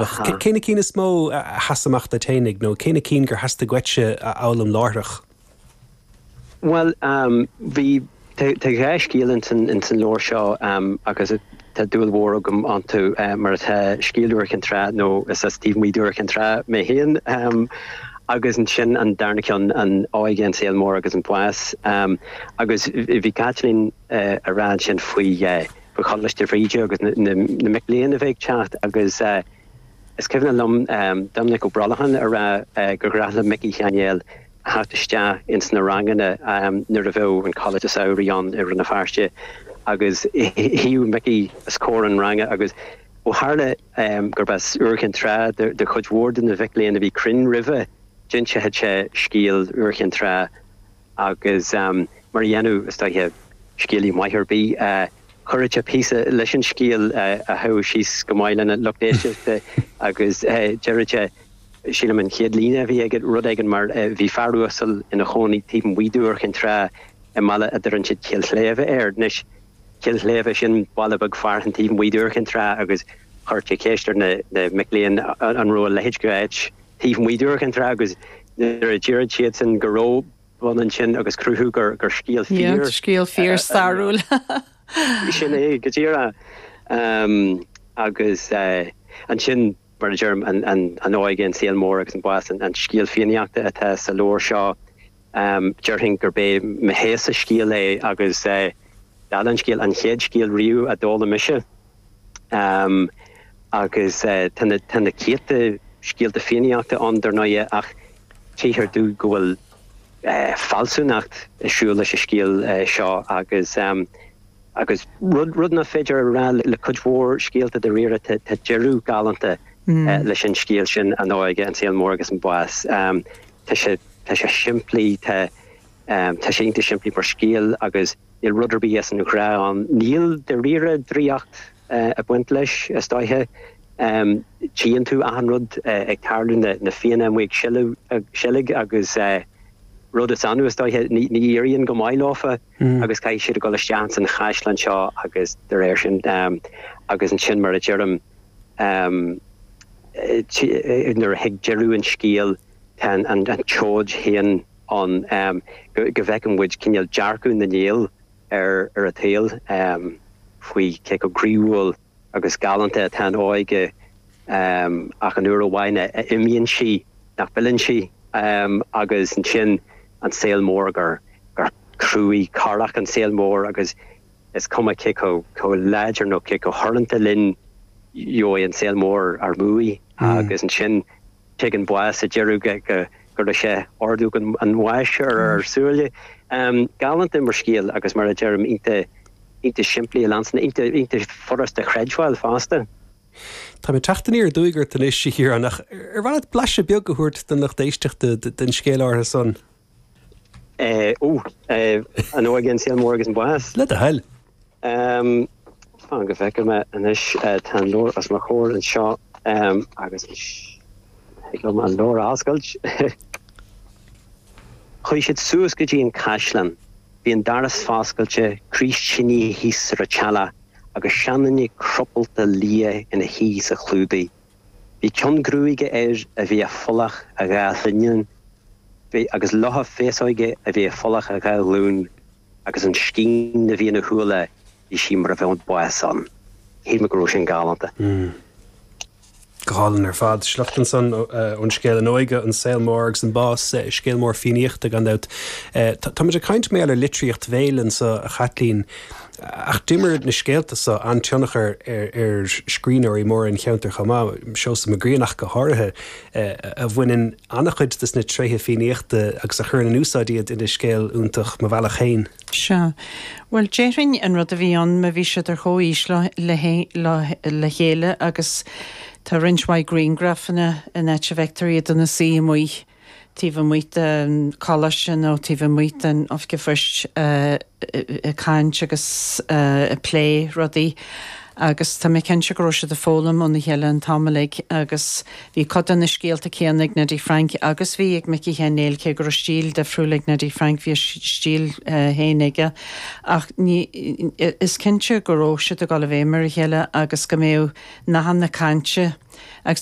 Ach cé na cinn is mó a sheas amach duit fhéinig nó cé na cinn gur theastaigh uait-se a fhoghlaim láithreach? Bhuel, bhí, tá dhá scéal ins an, ins an leabhar seo agus tá dúil mhór agam iontu mar atá scéal Iúr Chinn Trá nó is as taobh amuigh d'Iúr Chinn Trá mé féin agus ansin an darna ceann An Óige, an Saol Mór agus an Bás. Agus bhí Caitlín. a rá ansin faoi Choláiste Bhríde agus na mic léinn a bheith ag teacht agus is cuimhne liom Doiminic Ó Brolcháin ag rá gur ghnách le Micí Sheáin Néill a theacht isteach ins na ranganna nuair a bheadh an Coláiste Samhraidh ann i Rann na Feirste agus shuíodh Micí os comhair an ranga agus ó tharla gurb as Iúr Chinn Trá do chuid mhór de na mic léinn a bhí cruinn roimhe d'inseadh sé scéal Iúr Chinn Trá. Agus mar a dhéanadh, is dóiche, scéalaí maith ar bith, chuireadh sé píosa leis an scéal a ghabhfadh síos go maith lena lucht éisteachta agus deireadh sé, sílim an chéad líne a bhí aige, rud éigin mar, 'Bhí fear uasal ina chónaí taobh amuigh d'Iúr Chinn Trá i mbaile a deireann siad Cill Shléibhe air. Anois, Cill Shléibhe, sin baile beag fearainn taobh amuigh d'Iúr Chinn Trá agus chuireadh sé ceist ar na mic léinn an raibh a leithéid d'áit taobh amuigh d'Iúr Chinn Trá agus nuair a deireadh siadsan go raibh bun ansin agus cruthú gur scéal fíor Scéal fíor stairiúil. sin é go díreach agus ansin mar a deirim an óige, an saol mór agus an bás, an scéal Fiannaíochta atá sa leabhar seo. Déarfainn gurb é mo roghasa scéil é agus d'fhad an scéal an chéad scéal riamh a d'fhoghlaim mise. Agus tá na céadta scéalta fiannaíochta ann, dar ndóighe, ach tchíthear domh go bhfuil fealsúnacht ag siúl leis an scéal seo agus agus rud nach féidir a rá le cuid mhór scéalta dáiríre, tá deireadh galánta leis an scéal sin, an óige, an saol mór agus an bás. Tá sé simplí, tá sé iontach simplí mar scéal agus. Níl rud ar bith as an ghnách ann. Níl dáiríre draíocht ag baint leis, is dóiche. Tchíonn tú achan rud ag tarlú, na fianna amuigh ag seilg agus rud is annamh, is dóiche, ní éiríonn go maith leofa agus caithfidh siad a dhul isteach ins an chaisleán seo agus de réir sin. Agus ansin mar a deirim, nuair a thig deireadh an scéil, tá an tseoid féin ann go bhfeiceann muid cineál dearcadh na nGael ar an tsaol, faoi cé chomh croíúil agus galánta atá an óige ach an uair amháin a imíonn sí, nach bhfilleann sí agus ansin an saol mór, gur cruaidh corrach an saol mór agus is cuma cé chomh láidir nó cé chomh hurrúnta linn, gheobhaidh an saol mór ár mbuaidh agus ansin. Tig an bás sa deireadh go gcuirfidh sé ordóg an bháis ar ár súile. Galánta mar scéal agus mar a deirim iontach simplí a leanstan, iontach furasta a chreidbheáil fosta. Táim ag teacht aniar aduaidh ort anois, a Chiaráin, ach ar mhaith leat blaiseadh beag a thabhairt don lucht éisteachta den scéal áirithe san? Eh, ooh, eh, An Óige, an Saol Mór agus an Bás. Le do thoil. Ehm, fan go bhfeice mé anois eh, tá an leabhar os mo chomhair anseo ehm, agus is thig liom an leabhar a oscailt. Chuaigh siad suas go dtí an caisleán. Bhí an doras foscailte, craos tine thíos ar an teallach agus seanduine cropalta liath ina shuí sa chlúdaigh. Bhí ceann gruaige air a bhí ag folach a dhá shlinneán, agus leothadh féasóige a bhí ag folach a dhá ghlún, agus an scéin a bhí ina shúile bhí sí mar a bheadh an bás ann. Shíl mé go raibh sin galánta. Mh. Go hálainn ar fad. Sliocht ansan ón scéal An Óige, an Saol Mór agus an Bás. Scéal mór Fiannaíochta gan dabht. Táimid ag caint bhuel ar litríocht bhéil anso a Chaitlín. Ach d'imir na scéalta so an-tionchar ar scríbhneoirí móra an cheantair chomh maith, Seosamh Mac Grianna ach go háirithe, a bhaineann an-chuid des na tréithe Fiannaíochta agus a chuireann in úsáid iad ina scéal iontach Mo Bhealach Féin. Sea. Bhuel, déarfainn an rud a bhí ann, ná bhí siad ar chomhaois le chéile agus tá roinnt mhaith grianghrafanna ann, áit a bhfeictear iad ina suí amuigh. taobh amuigh den Choláiste nó taobh amuigh den Oifig Phoist ag caint agus ag plé rudaí agus tá mé cinnte go raibh siad ag foghlaim óna chéile an t-am uilig agus bhí cuid de na scéalta céanna ag Neidí Frainc agus a bhí ag Micí Sheáin Néill cé go raibh stíl difriúil ag Neidí Frainc bhí a stíl féin aige ach is cinnte go raibh siad ag dul i bhfeidhm ar a chéile agus go mbeadh nathanna cainte agus